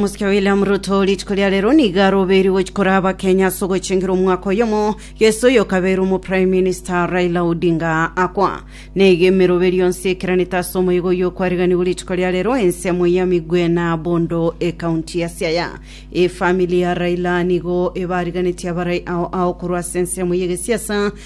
Mosike William Ruto rituko ria rero nigo arobeirwe gochia koraa abakenya ase ogochengera omwaka oyomo Yeso oyo okabeirwe omo Prime Minister Raila Odinga akwa. Neigo emeroberio yonsi ekeranete ase omoyega oyio okwariganigwe rituko ria rero ense amo ya Migwe na Bondo ecounty ya Siaya. Efamili ya Raila nigo ebariganetie abarai ao ao korwa ase ense amo yegesiasa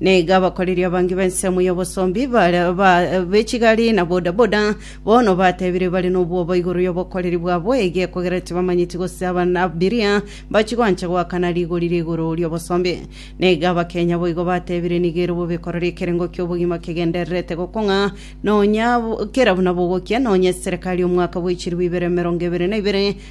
Na igo abakoreri abange b'ensemo y'obosomba ibare be chigari na bodaboda bono bateebire bare nobwoba igoro y'obokoreri bwabo ege, kogera tibamanyeti gose ab'abiria mbachie gwancha goakana rigori riguru ri'obosombe. Na igo abakenya boigo bateebire, Nigo ere bobe korora ekerengo ki'obogima kegendererete gokong'a nonya kera buna bogokia, nonya eserekari y'omwaka bw'echiribu ibere emerongo ebere na ibere,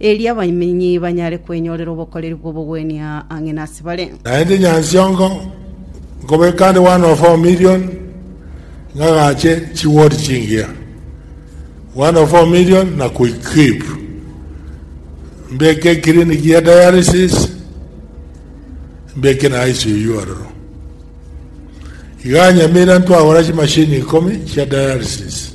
erio abamenyi banyare kwenyorera obokoreri bw'obogwenia ang'e nase bare. Naende nyansiongo nkobeka nde one of four million ng'agache chiwodi chingiya one of four million na koequip mbeke eclinic ya dialysis mbeke na ICU aroro iga Nyamira ntwagora chimashini ikomi chia dialysis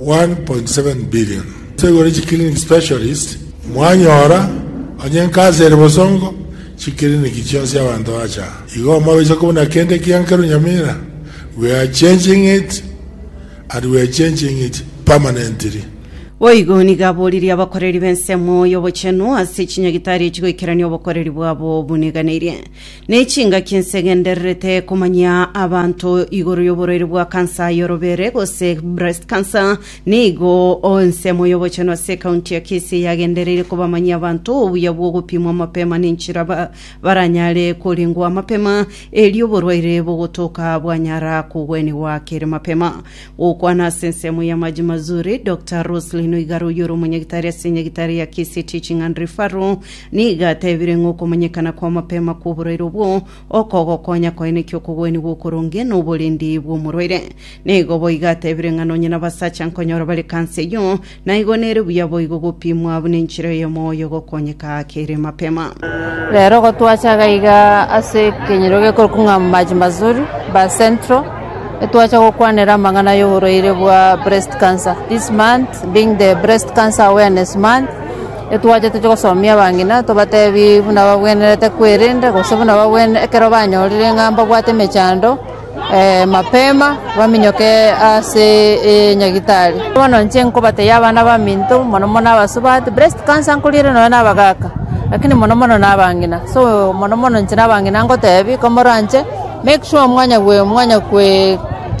1.7 billion ase igoro chi clinic specialist mwanyora onye nkansa ere bosongo chi clinic chionsi abanto bacha igo mobeche kobuna kende ekiya nkerwa Nyamira we are changing it and we are changing it permanently. Boigo nigo aboririe abakoreri b'ensemo y'obochenu ase chinyagitari echi goikerania obokoreri bwabo buniganeirie. Ne chingaki ense egendererete komanyia abanto igoro y'oborwaire bwa kansa y'orobere, gose breast cancer, nigo ensemo y'obochenu ase ekaunti ya Kisii yagendereire kobamanyia abanto obuya bw'ogopimwa mapema nenchera ba- baranyare korengwa mapema erio oborwaire bogotoka bwanyara kogwenigwa kere mapema. Gokwana ase ensemo ya Maji Mazuri, Doctor Roselyn Oigara oyio ore omonyagitari ase enyagitari ya Kisii Teaching and Referral Nigo atebirie ng'a okomanyekana kw'amapema kw'oboraire obwo okogokonya koenekia okogwenigwa okoronge na oborendi bw'omorwaire. Nigo boigo atebirie ng'a nonye nabasacha nkonyora bare kansa eyio, naigo nere buya boigo gopimwa buna enchera y'omoyo gokonyeka kere mapema. Rero igo twacha gaiga ase ekenyero gekorokwa ng'a Maji Mazuri, Ba Central, etwacha gokwanera amang'ana y'oborwaire bwa breast cancer. This month being the breast cancer awareness month, Etwache toche gosomia abang'ina, tobateebie buna bagwenerete kwerenda, gose buna bagwenerete ekero banyorire ng'a mbabwate emechando, mapema baminyoke ase enyagitari. Bono inche nkobatebia abana baminto, mono mono abasubati, breast cancer nkoriera nonya na abagaka, lakini mono mono na abang'ina. So mono mono inche na abang'ina ngoteebia komoranche, make sure mwanya mwanya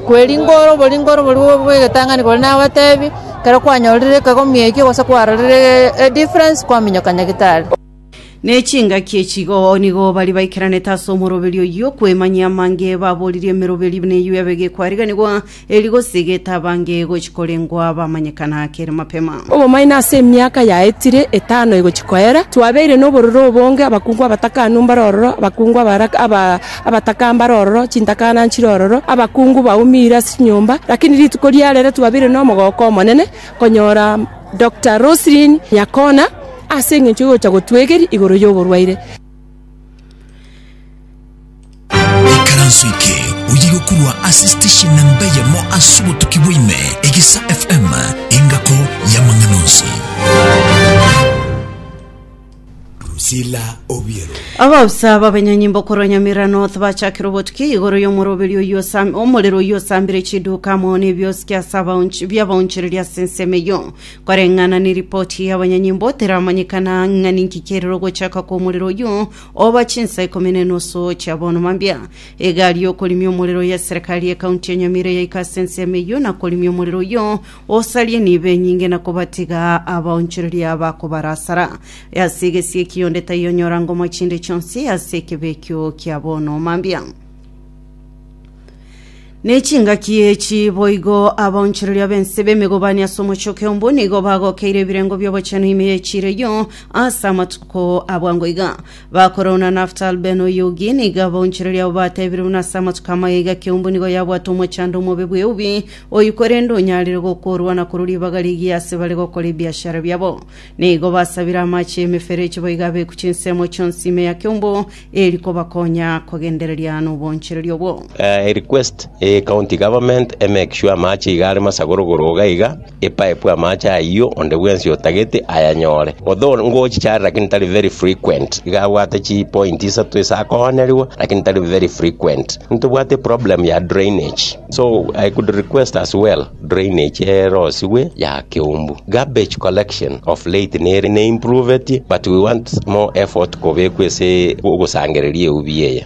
kweringora oboringori oboria bwegetang'ani kore nabateebie. Ekero kwanyorire ekegomia ekio gose kwarorire edifference kwaminyoka Nyagetari. Ne chingaki echi igooo nigo bari baikeranete ase omoroberi oyio, kwemanyia amange baboririe emeroberi neyio yabe gekwariganigwa, erio gose getabange gochi korengwa bamanyekana kere mapema. Obomaene ase emiaka yaetire etano egochi koera, twabeire nobororo obonge, abakungu abatakanu mbare ororo, abakungu abara, aba. Abataka mbare ororo, chintakana nchire ororo, abakungu baumire ase chinyomba, lakini rituko riarero twabeire nomogooko omonene konyora Doctor Roselyn Nyakona ase engencho y'ogocha gotwegeria igoro y'oborwaire. Ekaranso eke oyegokurwa ase station namba eyemo ase obotuki bwa ime, Egesa FM, engako y'amang'ana onsi. Priscilla Obiero. Abaofisa b'abenyanyimbo korwa Nyamira North bachakire obotuki igoro y'omoroberi oyio osam- omorero oyio osambire chiduka amo n'ebiosiki ase abaonch- bi'abaonchereri ase ensemo eyio koreng'ana neripoti y'abanyanyimbo teramanyekana ng'a ninki kiarire ogochaka kw'omorero oyio oba chinsa ikomi na enusu chia bono mambia egari y'okorimia omorero ya serikali y'ekaunti ya Nyamira yaika ase ensemo eyio na korimia omorero oyio Osarie nibo enyinge na kobatiga abaonchoreria bakobarasara. Ase egesie ekio onde taiyo onyora ngomo chinde chionsi ase ekebe ekio kia bono mambia. Nechingaki echi boigo abaonchoreria b'ense b'emegobani ase omochoke ombo nigo bagokeire ebirengo bi'obochenu ime y'echiira eyio ase amatuko abwango iga. Bakora ona Naftal ben Oyugi nigo abaonchoreria abo batebire buna ase amatuko amaya iga keumbu nigo yabwate omochando omobe bw'eubi Oyio korende onyarire gokoorwa na korwa ribaga rigiya ase bare gokora ebiashara biabo. Nigo basabire amache y'emeferechi boigo abeku chinsemo chionsi ime ya keumbu, eri kobakonya kogendereria noboonchereri obwo. Eh, a request eh, county government e make sure amache iga are masagorogoro iga iga e pipe amache ayio onde bwensi otagete ayanyore although ngochicharera lakini tari very frequent iga abwate chi point isato ase akooneriwa lakini tari very frequent ntobwate problem ya drainage So I could request as well drainage erosigwe ya keumbu. Garbage collection of late nere ne improved but we want more effort kobekwa ase ogosangereria eubi eye.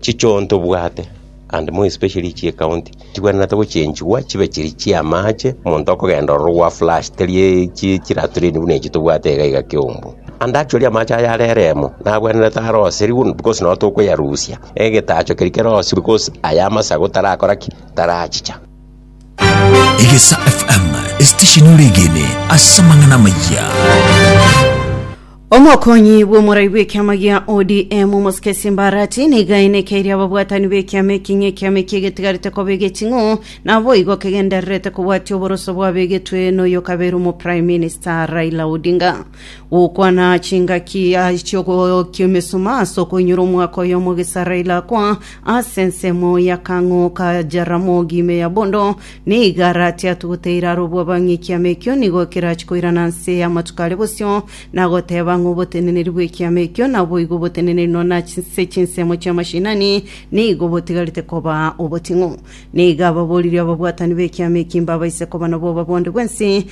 Chichoo tobwate and more especially chie county chibwenerete gochenchigwa chibe chiri chia amache omonto okogenda ororo gwa flush teri chi chilatrine buna echi tobwate iga iga keumbu. And actually amache aya are eremo nabwenerete aroserigwe because notokoyarusia. Egetacho keria kerosiru gose aya amasagu tarakora ki? Tarachicha. Egesa FM, esitesheni oregene ase amang'ana amayia. Omokonyi bw'omorai bw'ekiama gia ODM omosike Simbarati nigo ainekeirie ababwatani b'ekiama eki ng'a ekiama eki egetigarete koba egeching'u naboigo kegendererete kobwatia oboroso bwabegetwe noyokabeire omoprime minister Raila Odinga. Gokwana chingaki chi'ogokia emesuma ase okoinyora omwaka oyomo Gisaraeli akwa ase ensemo y'akang'o ka Jaramogi ime ya bondo, na igare atiatwe goteira arobwo abang'e ekiama ekio nigo kerachi koirana nse y'amatuko aria bosio, na goteba ng'a oboteneneri bw'ekiama ekio naboigo oboteneneri nonya ase chinsemo chi'amashinani nigo botigarete koba oboting'u. Na iga ababoririe ababwatani b'ekiama ekio mbabaise koba nabwo obabonde bw'ense,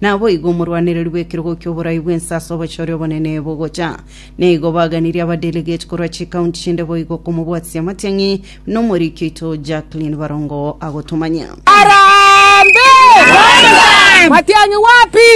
Naboigo omorwanereri bw'ekerogo ki'oborai bw'ense ase obochore obonene bogocha. Na igo baganirie abadelegate korwa chikaunti chinde boigo komobwatisia amatiang'i na omoriki oito Jacqueline Barongo agotomanya. Matiang'i wapi?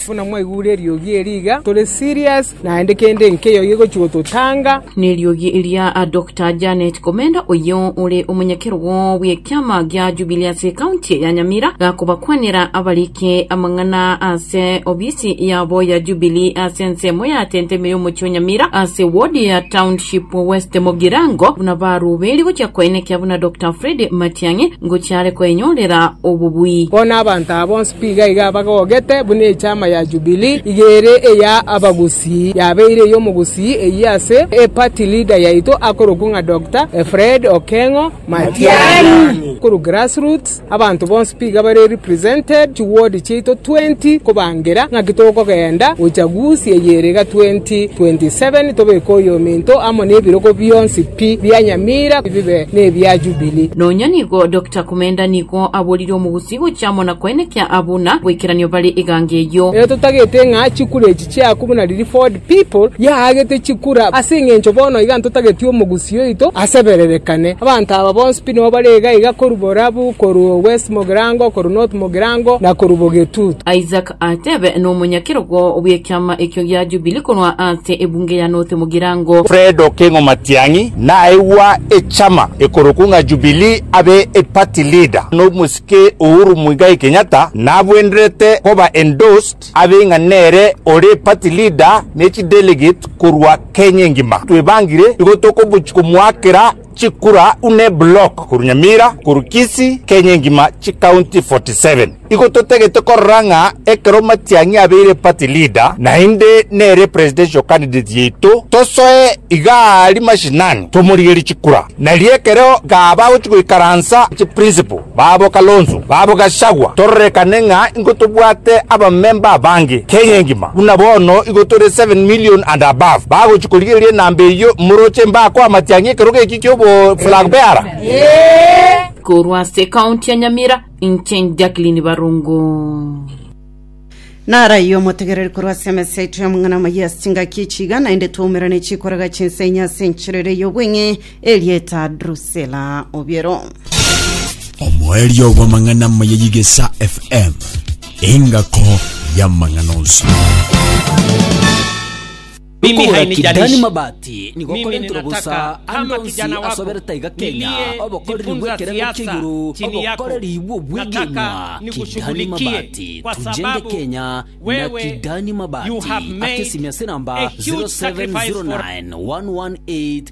Buna mwaigure eriogi eri iga, tore serious Naende kende nkeyio gegochigwa totanga. Neriogi eria Doctor Janet Komenda oyio ore omonyakerogo bw'ekiama gia Jubilee ase ekaunti ya Nyamira gakobakwanera abarike amang'ana ase obisi yabo ya Jubilee ase ensemo ya Tenteme y'omochie o Nyamira ase ward ya Township West Mogirango buna barubeiri gochia koenekia buna Doctor Fred Matiang'i ngochia are koenyorera obobui. Bono abanto aba bonsi Iga iga abagogete, buna Echama ya Jubili iga ere eya abagusii yabeire ey'omogusii eyio ase eparty leader yaito akorokwa ng'a Doctor Fred Okeng'o Matiang'i. Korwa grassroots abanto bonsi piga bare represented, chiward chiaito twenty kobangera ng'aki tokogenda uchaguzi eye ere iga 2027 tobeke oyominto amo na ebirogo bionsi pi bia Nyamira bibe nebia Jubili. Nonya nigo Doctor Komenda nigo aborire omogusii Tigochia amo na koenekia abwo na boikeranio bare egango eyio. Erio totagete ng'a chikura echi chi'aku buna riria Ford People yaagete chikura, ase engencho bono iga ntotagetie omogusii oito asebererekane. Abanto aba bonsi pi nigo bare iga iga korwa Borabu, korwa West Mogirango, korwa North Mogirango, na korwa Bogetutu. Isaac atebe nomonyakerogo bw'ekiama ekio gia Jubili korwa ase ebunge ya North Mugirango. Fred Okengo Matiang'i naegwa echama ekorokwa ng'a Jubili abe eparty leader nomosike Uhuru Muigai Kenyatta nabwenderete koba endorsed abe ng'a nere ore party leader nechidelegate korwa Kenya engima. Twebangire igo tokomochia komoakera Chikura une block korwa Nyamira korwa Kisii Kenya engima chikaunti 47 igo totagete korora ng'a ekero Matiang'i abeire party leader naende nere presidential candidate yaito tosoe iga aria mashinani tomorigerie chikura nario ekero gaba agochi goikaransa chiprinciple Babo Kalonzo, babo Gachagua, tororekane ng'a ingotobwate abamemba abange Kenya engima, buna bono igo tore seven million and above bagochia korigereria enamba eyio, moroche mbaa koa Matiang'i ekerogo eki kiobo flag bearer. Korwa ase ekaunti ya Nyamira, inche Jacqueline Barongo. Naraiyo omotegereri korwa ase emesa yaito y'amang'ana amayia ase chingaki echi iga, naende twaumerane chikoraga chinsa inye ase enchera ere y'obweng'e, erieta Drusela obiero. omoerio bw'amang'ana amaya y'egesa fm engako y'amang'ana onsi Okogora kidani mabati nigo korentire bosa ande onsi as'obere taiga kenya obokoreri bw'ekerengo kia igoro, obokoreri bw'obwegenwa, kidani mabati tujenge kenya na kidani mabati ake simia sinamba 07091188.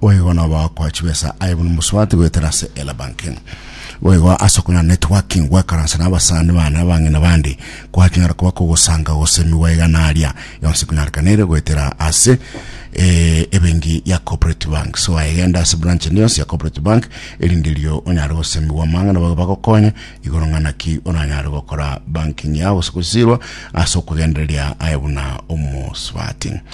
Boigo nobe okoa chibesa aye buna omosubati goetera ase Ela Banking. Boigo ase okong'ana networking goekaransa na abasani bane abang'ina bande kwaching'ara koba kogosanga gose emigwa igana aria yonsi kunyarekanere goetera ase eh, ebenki ya Corporate Bank. So aegenda ase branch ende yonsi ya Corporate Bank erinde erio onyare gose emigwa amang'ana bago bagokonye igoro ng'ana ki oranyare gokora banking yao gose gosirwa ase okogendereria aye buna omosubati.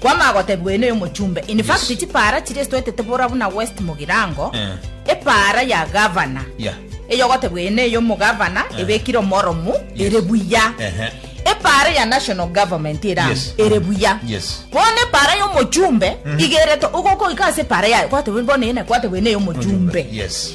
Kwama agotebigwa oyo noyo omochumbe. In fact Yes. chipaara chiria esitwetete bora buna West Mugirango, Eh. epaara ya gavana Yeah. eyo ogotebwa eye neye omogavana Eh. ebekire omoromu Yes. ere buya. Ehe. Epaara ya national government ere amo Yes. ere buya. Yes. Bono epaara y'omochumbe igerete ogokoika ase epaara yaye kwatebwa bono eye naye kwatebwa eye neye omochumbe. Yes.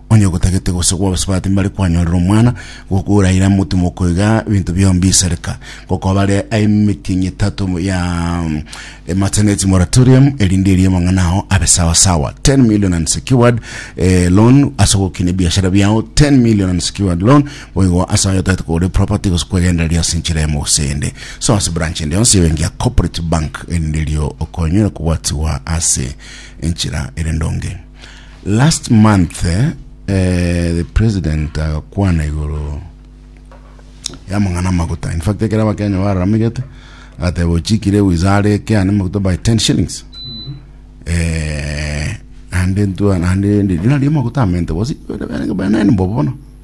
Onye gotagete gose gwabasibati mbare kwanyorera omwana, gokura ira motimoko iga ebinto biao mbisareka. Gokoa bare aye emetienyi etato ya mm, eh, maternity moratorium, erinde eria amang'ana ao abe sawa sawa. 10 million unsecured eh, loan ase gokina ebiashara biao, 10 million unsecured loan boigo ase ayo otagete kogora property gose kwegendereria ase enchera emo gose eyende. So ase branch ende yonsi ebenki ya corporate bank erinde erio okonyore kobwatiwa ase enchera ere ndonge. Last month eh, the president agakwana igoro ya mang'ana amaguta. In fact, ekero abakenya bararamigete agateba ochikire wizare eke ane maguta by 10 shillings. Eh, ande ntua ande ndi nari maguta amente bosi bana ni bobo bono.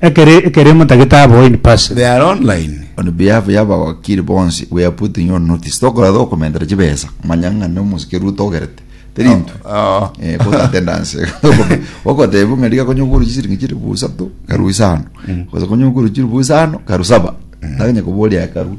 Ekere ekeremo tagete abo in person. They are online. On behalf y'abawakiri bonsi, we are putting you on notice. Tokora tokomentera chibesa, manya ng'a nomosi keruto ogerete. Teri intwe. Oh. Eh, court attendance. Ogotebu ng'a riga konye okuru chisiringi chiribu isato, karu isano. Gose konye okuru chiribu isano, karu saba. Nagenya koboria ekaru.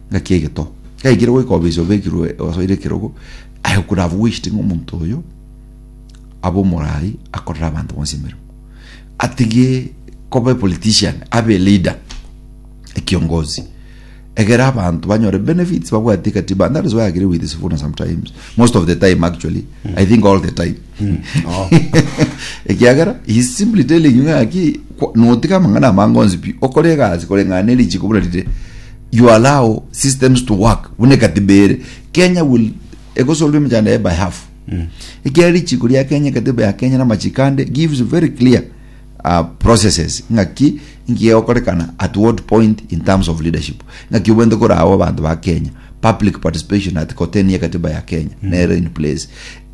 Ngaki egeto. Gaikire goika obeise obekirwe osoire ekerogo, aye could have wished ng'a omonto oyo abe omorai akorere abanto bonsi emeremo. Atige koba politician, abe leader, ekiongozi. Egere abanto banyore benefits babwate ekatiba. And that is why I agree with Sifuna sometimes. Most of the time actually. I think all the time. No. ekiagera he is simply telling you ng'aki kwa- notiga amang'ana amange onsi pi okore egasi koreng'ana ne richiko buna rire you allow systems to work buna ekatiba ere kenya will egosorwa emechando yaye by half ekiagera richiko ria kenya ekatiba ya kenya na amachiko ande gives very clear uh, processes ng'aki ngiye okorekana at what point in terms of leadership ng'aki obwente koraao abanto ba kenya public participation at koteni ekatiba ya kenya nere in place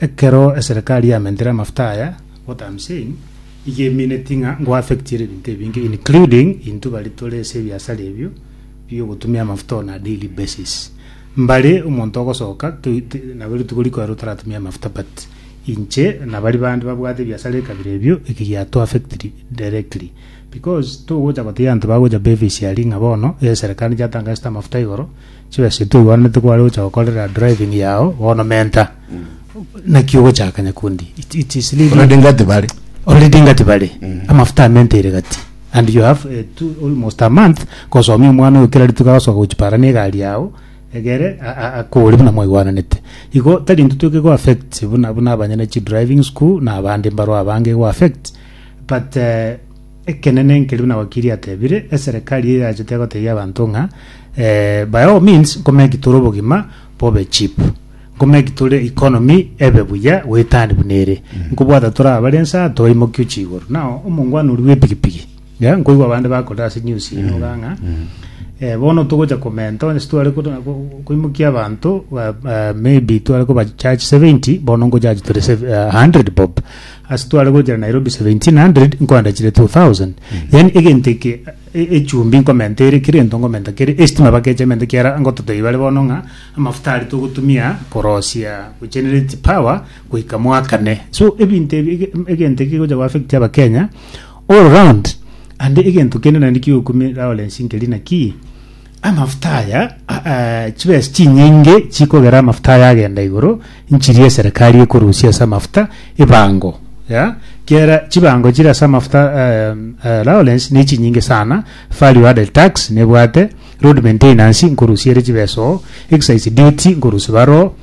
Ekero eserekari yamentire amafuta aya gotamsein igemineti ng'a ngoaffectiere ebinto ebinge including intwe baria tore ase ebiasara ebio bi'ogotumia amafuta on a daily basis. Mbare omonto ogosoka toi te nabo rituko riko ero taratumia amafuta but inche na baria bande babwate ebiasara ekabira ebio eki giatuaffectiri directly because togocha gotebi abanto bagocha bevis aria ng'a bono eserekari yatangeste amafuta igoro. Chibesa echi toigwananete kware gocha gokorera driving yao bono menta naki ogochaka nyakundi it, it is really Already ngati bare. already ngati bare amafuta amente ere gati and you have uh, two, almost a month kosomia omwana oyo kera rituko agasoka gochipara na egari yao egere a- a- akore buna mwaigwananete igo tari intwe toke go affect buna buna abanyene chi driving school na abande mbaro abange go affect but uh, Ekenene nkeribu na wakiri atebire eserekari eye yachete gotebia abanto ng'a eh, by all means nkomeki tore obogima bobe cheap nkomeki tore economy ebe buya goetani buna ere nkobwata tore abare ensa toimokio chigoro nao omongwana oria bw'epigipigi ya nkoigwa abande bakorire ase news eye noga ng'a eh, bono togocha komenta onye sitware ko- ko- koimokia abanto ba- ba- maybe tware koba charge 70 bono ngochachi tore sev- eh, 100 bob Ase tware gochera Nairobi 1700 nkoenda chire 2000 yaani egento eke e- echumbi nkomenta ere kere gento nkomenta kere esitima bakecha ementa kiara ngotota ibare bono ng'a amafuta aria togotumia korosia gochenerate power goika mwakane so ebinto ebi ege- em- egento eke gegocha goaffect abakenya all round ande egento kende naende kigokumia lawrence nkeri nakii Amafuta aya, a- a- chibesa chinyinge chikogera amafuta aya agenda igoro, nchiria eserekari ekorusia ase amafuta ebango, ya, kiera chibango chire ase amafuta eh, eh, allowance nechinyinge sana, value added tax nebwate, road maintenance nkorusia ere chibesa oo, excise duty nkorusia bare oo,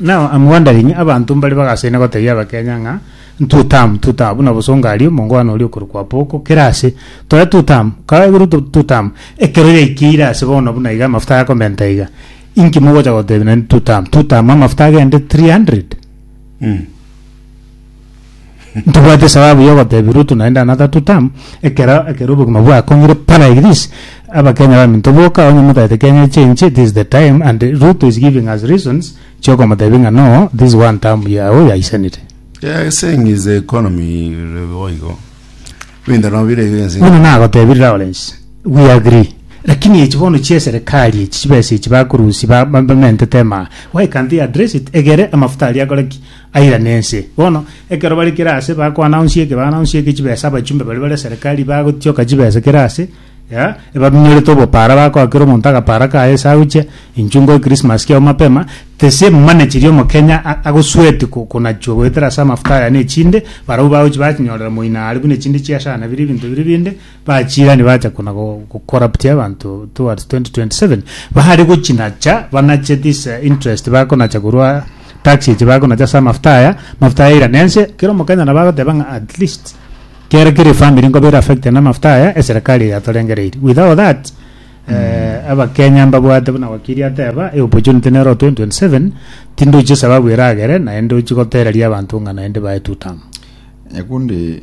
Now am wondering abanto mbare bagasaina gotebia abakenya ng'a two term two term buna bosongo aria omongwana oria okorokwa apoko kera ase tore two term kabe ruto two term ekero yaikeire ase bono buna iga amafuta yakomenta iga inki mogocha gotebia naende two term two term amafuta agende 300 Ntibwati esababu y'ogotebia Ruto naende another two term, ekero ekero obogima bwakongire pa like this, abakenya baminto boka onye motagete Kenya echenche this is the time and Ruto is giving us reasons chiokomotebia ng'a no this one term yago yaisanete. Yeah, he's saying is the economy re- boigo. Ebinto nabo bire iga ense. Bono nagotebiri Lawrence, we agree. Lakini echi bono chia eserikari echi chibesa echi bakorusia ba- ba- bamentete emaa. Why can't they address it? Egere amafuta aria akore ki? Airane ense. Bono, ekero bare kera aase bakoanaunsia eke, baanaunsia eke chibesa abachumbe baria bare serikali bagotioka chibesa kera aase, ya, ebaminyorete obopara bakoakera omonto agapara kaye ase agochia inchu ngoe Christmas kiao mapema, tese mane chiria omokenya a- agosweeti ko- konachwa goetera ase amafuta aya na echinde, barabwo bagochi bakinyorera moino are buna echinde chiasana bire ebinto bire binde, bachirani bacha kona go- go- corruptia abanto towards 2027 bahare gochinacha banache this eh, interest bakonacha korwa tax eche bakonacha ase amafuta aya mafuta aya airane ense kera omokenya nabo agoteba ng'a at least kera kera efamiri nkoba ere affected na amafuta aya eserikali eye yatorengereiri without that eh, abakenya mbabwate buna wakiri ateba e opportunity nero 2027 tindochi esababu eragere naende ochi gotereria abanto ng'a naende bae two term Nyakundi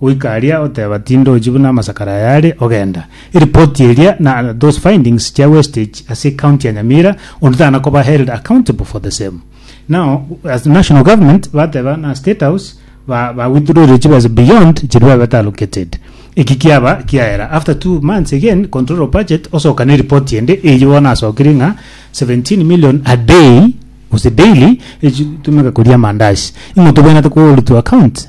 Goika aria oteba tindochi buna amasakara aya are, ogenda. Eripoti eria na those findings chia wastage ase ecounty ya Nyamira onde tana koba held accountable for the same. Now as national government bateba na state house ba ba withdrawire chibesa beyond chiria babete allocated. Eki kiaba kiaera after two months again controller of budget osoka ne report ende eyio bono asokirie ng'a 17 million a day gose daily echitumeka koria amandazi. Ing'o tobwenerete ko hold to account?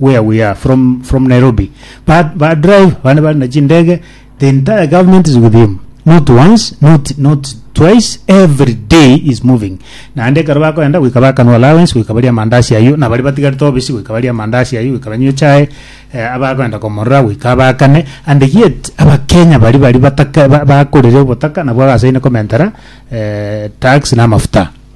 where we are from from Nairobi but ba drive bane bari na chindege the entire government is with him not once not not twice every day is moving naende ekero bakoenda goika bakanwa allowance goika baria mandasi ayio na bari batigarete obisi goika baria mandasi ayio goika banywe chai eh, abakoenda komorora goika abakane and yet abakenya bari bari bataka ba- bakorire obotaka nabwo agasaine komentera eh, tax na amafuta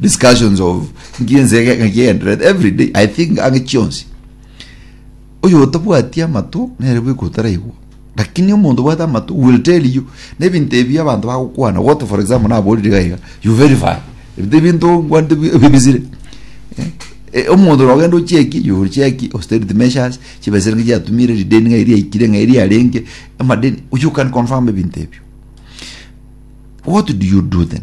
discussions of nki ense ege- ng'aki egendererete every day i think ang'e chionsi oyo otabwati amato nere bweka otaraigwa lakini omonto obwate amato will tell you nebinto ebi abanto bagokwana gote for example naborire iga iga you verify ebinto ebinto ngwanete bi- ebibisire Eh, omonto nogenda ocheki you will check austerity measures chibesa nigo chiatumire rideni ng'ai riaikire ng'ai riarenge amadeni you can confirm ebinto ebio what do you do then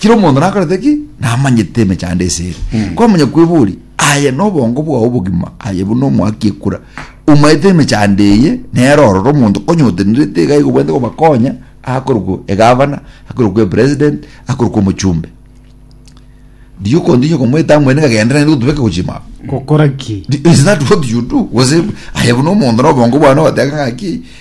Kera omonto nakorete ki namanyete emechando ase ere kwamanya kweboria aye nobongo bwao obogima aye buna omoaki ekura omanyete emechando eye nere ororo omonto konyotenrete iga iga obwenerete kobakonya akorokwa egavana akorokwa epresident akorokwa omochumbe riria okontigia okomoeta amwene ng'a genda naende gotubeka gochima gokora ki Di- is that what you do gose aye buna omonto na obongo bwane ogoteba ng'aki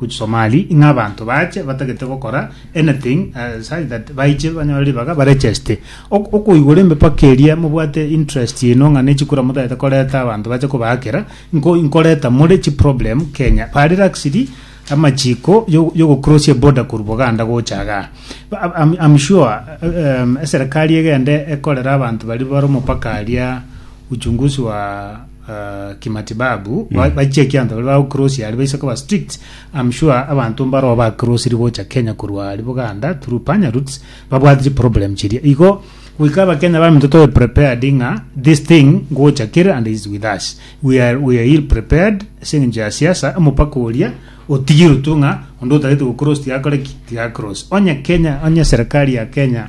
Which Somali, ing'a abanto bache batagete gokora anything eh, such that baiche banyore ribaga barecheste. Ok- Okoigora embe paka eria mobwate interest ino ng'a ne chikura motagete koreta abanto bache kobaakera nko inkoreta more chi problem Kenya. Ba relaxed amachiko yo yo gocross eboarder korwa Buganda gocha igaa. Ba- ab- I'm, I'm sure eh, em, eserekari egende ekorere abanto baria bare omopaka aria uchunguzi wa uh, kimatibabu mm. bachia ekianto bari bagokrosi ari baise koba strict am sure abanto mbaro bakrosiri gocha kenya korwa ari buganda through panya roots babwatiri problem chiria igo goika abakenya baminto tobe prepared ng'a this thing ngocha kere and is with us we are, we are ill prepared aseng'encho ya siasa omopaka oria otigirwe tu ng'a onde otagete gokrosi tigakore ki tigakrosi onye kenya onye serikali ya kenya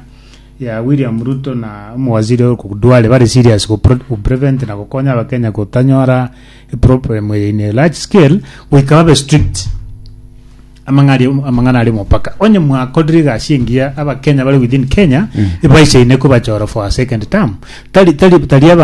ya William Ruto na omowaziri oyo Duale bare serious go prevent na gokonya abakenya gotanyora eproblem eye in a large scale goika babe strict amang'ana aria omopaka onye mwakorire egasi engiya abakenya bare within Kenya mm. ebaisaine kobachora for a second term tari tari tari abantu